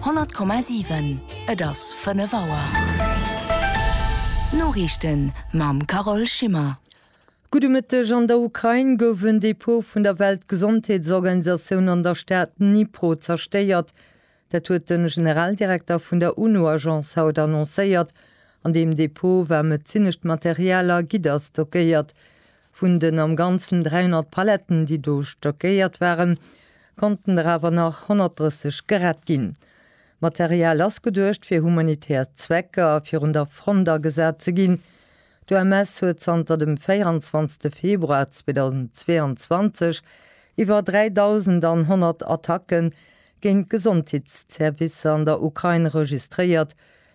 100,7 Et ass 5 Auer. D'Noriichten mam Carole Schimmer. Gudde Mëtteg, An der Ukrain gouf en Depot vun der Weltgesondheetsorganisatioun an der Stad Dnipro zerstéiert. Dat huet de Generaldirekter vun der UNO-Agence haut annoncéiert. An deem Depot war medezinescht Material a Gidder stockéiert. Vun den am Ganzen 300 Paletten, déi do stockéiert waren, konnten der awer nach 130 gerett ginn. D'Material ass geduecht fir humanitär Zwecker virun der Front agesat ze ginn. D'OMS huet zanter dem 24 Februar 2022 iwwer 3.100 Attacke géint d'Gesondheetsservicer an der Ukrain registréiert,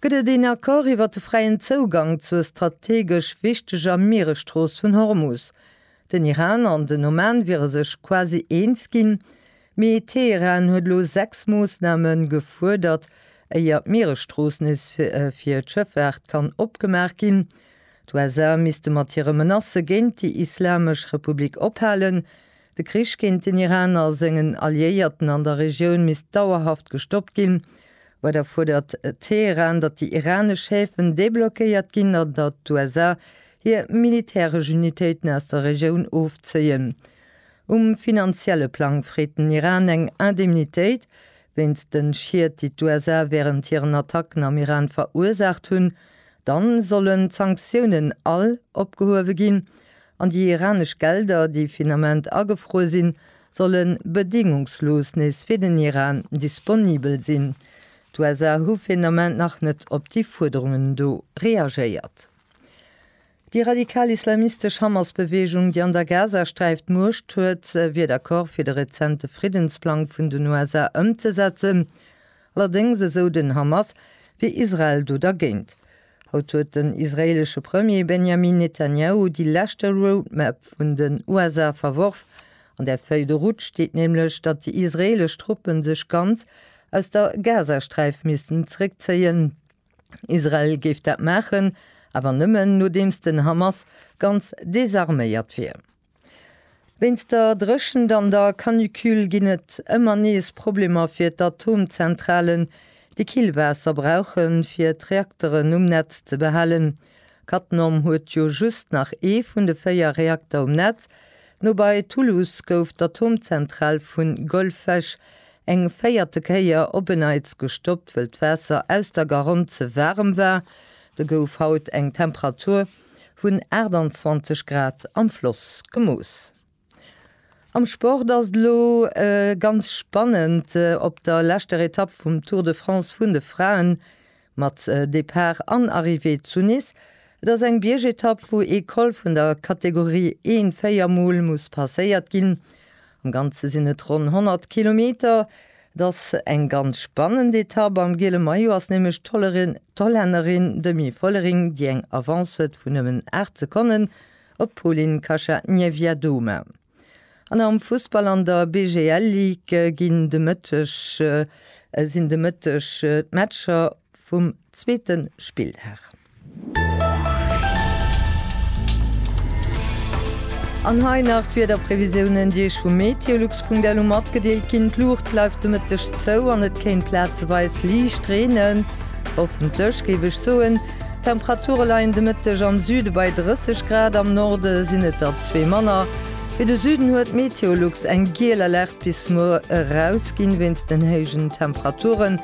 Gëtt et een Accord iwwer de fräien Zougang zur strategesch wichteger Mieresstrooss vun Hormus? Den Iran an den Oman wiere sech quasi eens ginn, mee Teheran huet elo sechs Moossname gefuerdert, éier d'Mieresstrooss nees fir d'Schëffaart kann opgemaach ginn. D'USA misste mat hire Menacë géint déi Islamesch Republik ophalen, De Krich géint den Iran a sengen Alliéierten an der Regioun misst dauerhaft gestoppt ginn. Weider fuerdert Teheran, datt déi iranesch Häfen deblockéiert ginn an datt d'USA hir militäresch Unitéiten aus der Regioun ofzéien. Um finanzielle Plang freet den Iran eng Indemnitéit wéinst de Schied, déi d'USA wärend hiren Attacken am Iran verursaacht hunn. Dann sollen d'Sanktiounen all opgehuewe ginn An déi iranesch Gelder, déi fir den Ament agefruer sinn, solle bedéngungslos nees fir den Iran disponibel sinn. D'USA hu fir den Ament nach net op déi Fuerderungen do reagéiert. Déi radikal-islamistesch Hamas-Beweegung, déi an der Gazasträif d'Muecht huet, wier d'Accorde fir de rezente Friddensplang vun den USA ëmzesetzen. Allerdéngs, esou den Hamas, wier Israel do dergéint. Haut huet den israeelesche Premier Benjamin Netanjahu déi leschte Roadmap vun den USA verworf. An der Feuille de route steet nämlech, datt déi israeelesch Truppe sech ganz aus der Gazasträif missten zeréckzéien. Israel géif dat maachen, awer nëmmen, nodeems den Hamas ganz desarméiert wier. Wéinst der Dréchent an der Canicule ginn et ëmmer nees Problemer fir d'Atomzentralen, déi Killwaasser brauche fir d'Reakteren um Netz ze behalen. Cattenom huet jo just nach ee vun de véier Reakter um Netz. No bei Toulouse gouf d'Atomzentral vu Golfech eng véierte Kéier op en Neits gestoppt, wëll d'Waasser aus der Garonne ze waarem war. Do gouf haut eng Temperatur Vun 28 Grad am Floss gemooss. Am Sport ass et elo ganz spannend op der leschter Etapp vum Tour de France vun de Fraen, mat Depart an Arrivée zu Nice. Et ass eng Biergetapp, wou ee Col vun der Kategorie I véier Mol muss passéiert ginn. Am Ganze sinn et ronn 100 Kilometer. 't ass eng ganz spannend Etapp, am giele Maillot ass nämlech d'Hollännerin Demi Vollering, déi eng Avance huet vun nëmmen 8 Sekonnen op d'Polin Kasia Niewiadoma. An am Fussball an der BGL Ligue ginn de Mëtteg sinn de Mëtteg d'Matcher vum zweete Spilldag. An hei nach d'Wiederprevisiounen, déi Iech vu meteolux.lu matgedeelt ginn. D'Luucht bleift de Mëtteg zou an et kéint plazeweis liicht reenen, hoffentlech géif ech soen. D'Temperature leien de Mëtteg am Süde bei 30 Grad, am Norde sinn et der zwee manner. Fir de Süden huet d'Meteolux eng giel Alerte bis muer erausginn, wéinst den héijen Temperaturen.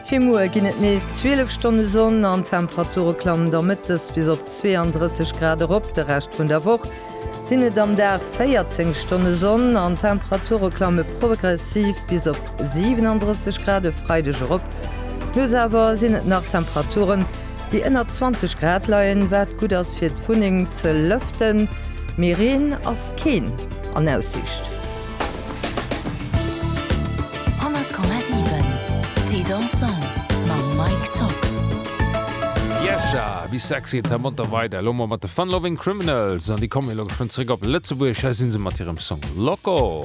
Fir muer ginn et nees 12 Stonne Sonn an d'Temperature klammen da mëttes bis op 32 Grad erop. De Rescht vun der Woch sinn et am Dag 14 Stonne Sonn an d'Temperature klamme progressiv bis op 37 Grad e Freideg erop. Nuets awer sinn et nach Temperaturen, déi ënner 20 Grad leien, wat gutt ass fir d'Wunneng ze lëften, mee Reen ass keen an Aussiicht. 100,7 Thé dansant mam Mike Top. Yesha, wie sexy et hermont da weider elo mol mat de Fun Loving Criminals an déi kommen elo geschwënn zréck op Lëtzebuerg. Hei si se mat hirem Song Loco.